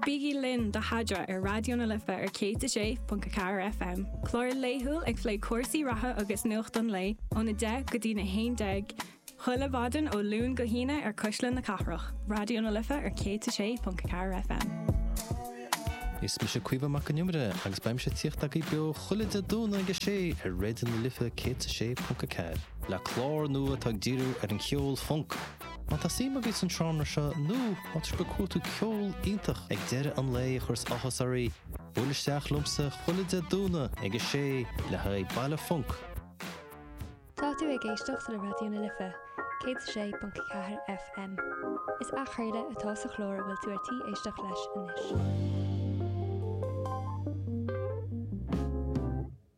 Bígí linn do Sheadra ar Raidió na Life ar 106.4 FM, clár laethúil ag plé cúrsaí reatha agus nuacht an lae ón 10 go dtí'n 11 chuile maidin ó Luan go hAoine ar Chuisle na Cathrach, Raidió na Life ar 106.4 FM. Is mise Caoimhe Mac an Iomaire agus beidh mise ag tíocht agaibh beo chuile Dé Domhnaigh ag a sé ar Raidió na Life 106.4 le clár nua atá ag díriú ar an cheol funk Má tá suim agaibh san seánra seo nó má tá sibh ag cuartú ceol iontach ag deireadh an lae a chuireas áthas oraibh, buail isteach liomsa chuile Dé Domhnaigh ag a sé le haghaidh Baile Func! Tá tú ag éisteacht le Raidió na Life, 106.4 FM. Is athchraoladh atá sa chlár a bhfuil tú ar tí éisteacht leis anois.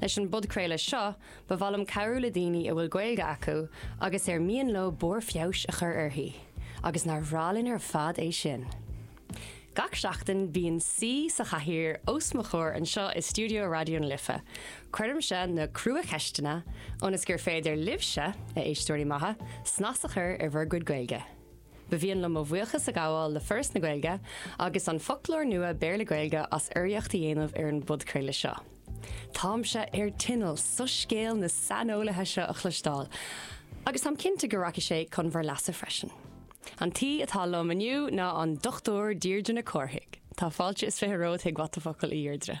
Leis an bpodchraoladh seo, ba mhaith liom cabhrú le daoine a bhfuil Gaeilge acu agus ar mian leo barr feabhais a chur uirthi, agus nár bhreá linn ar fad é sin! Gach seachtain, bíonn Saoi sa Chathaoir os mo chomhair anseo i stiúideo Raidió na Life. Cuirimse na crua-cheisteanna, ionas gur féidir libhse, a éisteoirí maithe, snas a chur ar bhur gcuid Gaeilge. Ba mhian liom mo bhuíochas a ghabháil le Foras na Gaeilge agus an Foclóir Nua Béarla-Gaeilge as urraíocht a dhéanamh ar an bpodchraoladh seo. Táimse ar tinneall soiscéal na saineolaithe seo a chloisteáil, agus táim cinnte go rachaidh sé chun bhur leasa freisin. An t-aoi atá liom inniu ná an Dr. Deirdre Nic Chárthaigh. Tá fáilte is fiche romhat chuig What the Focal, a Dheirdre.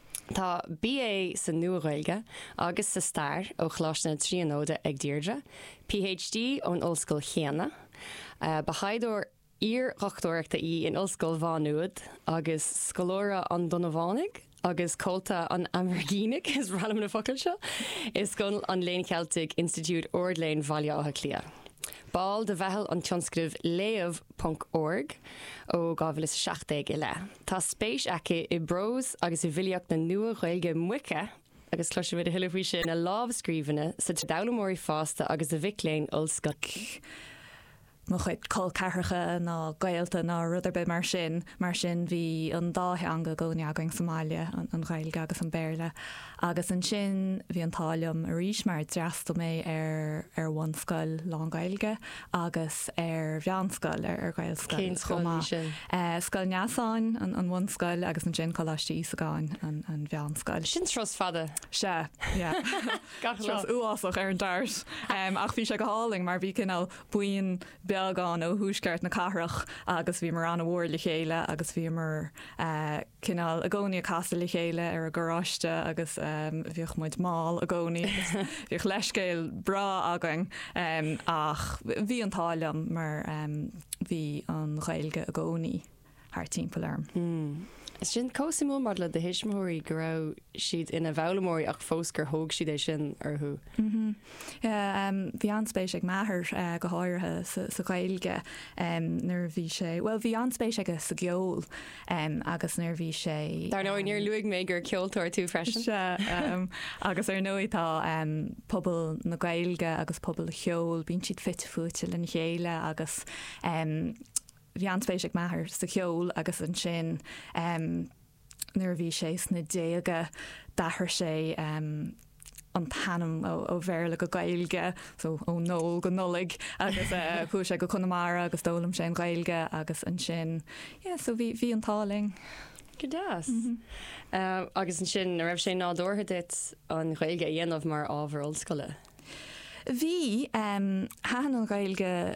Tá BA sa Nua-Ghaeilge agus sa Stair ó Choláiste na Tríonóide ag Deirdre, PhD ón ollscoil chéanna. Ba thaighdeoir iar-dhochtúireachta í in Ollscoil Mhá Nuad agus scoláire an Donnabhánaigh agus comhalta an Aimrigínigh, is random na focail seo, i Scoil an Léinn Cheiltigh, Institiúid Ard-Léinn Bhaile Átha Cliath. Ball de Mheitheal an Tionscnaimh Léamh ponc org ó 2017 i leith. Tá spéis aici i bprós agus i bhfilíocht na Nua-Ghaeilge Moiche agus cloisfimid a thuilleadh faoi sin, na lámhscríbhinní d'fhoghlaimeoirí fásta agus do mhic léinn ollscoile. mo chuid col ceathracha ná gaolta ná rud ar bith mar sin, mar sin bhí an dá theanga againn againn sa mbaile, an Ghaeilge agus an Béarla. Agus ansin bhí an t-ádh liom arís mar d'fhreastail mé ar ar bhunscoil lán-Ghaeilge agus ar mheánscoil, ar ghaelscoil chomh maith, Scoil Neasáin, an bhunscoil, agus ansin Coláiste Íosagáin, an mheánscoil. Sin turas fada. Sea, yeah. Turas uafásach ar an dart. Ach bhí sé go hálainn mar bhí cineál buíon bheag ann ó thuaisceart na cathrach agus bhíomar an-mhór le chéile agus bhíomar, cineál i gcónaí ag casadh le chéile ar an gcarráiste agus bhíodh muid mall i gcónaí agus bhíodh leithscéal breá againn ach bhí an t-ádh liom mar bhí an Ghaeilge i gcónaí thart timpeall orm. Sin chomh suimiúil maidir le do thuismitheoirí go raibh siad ina bhfoghlaimeoirí ach fós gur thóg siad é sin orthu. Bhí an-spéis ag m'athair go háirithe sa Ghaeilge nuair a bhí sé, bhuel, bhí an-spéis aige sa gceol agus nuair a bhí sé. Dar ndóigh, níor luaigh mé gur ceoltóir tú freisin. Sea, agus ar ndóigh tá pobal na Gaeilge agus pobal an cheoil, bíonn siad fite fuaite lena chéile agus bhí an-spéis ag m'athair sa cheol agus ansin nuair a bhí sé sna déaga d'athraigh sé an t-ainm ó Bhéarla go Gaeilge, so ó Noel go Nollaig agus chuaigh sé go Conamara agus d'fhoghlaim sé an Ghaeilge agus ansin yeah so bhí bhí an t-ádh linn. Go deas. Agus ansin a raibh sé nádúrtha duit an Ghaeilge a dhéanamh mar ábhar ollscoile? Bhí, thaitin an Ghaeilge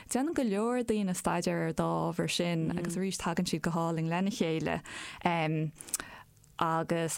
Déanann go leor daoine staidéar ar an dá ábhar sin agus arís tagann siad go hálainn lena chéile agus.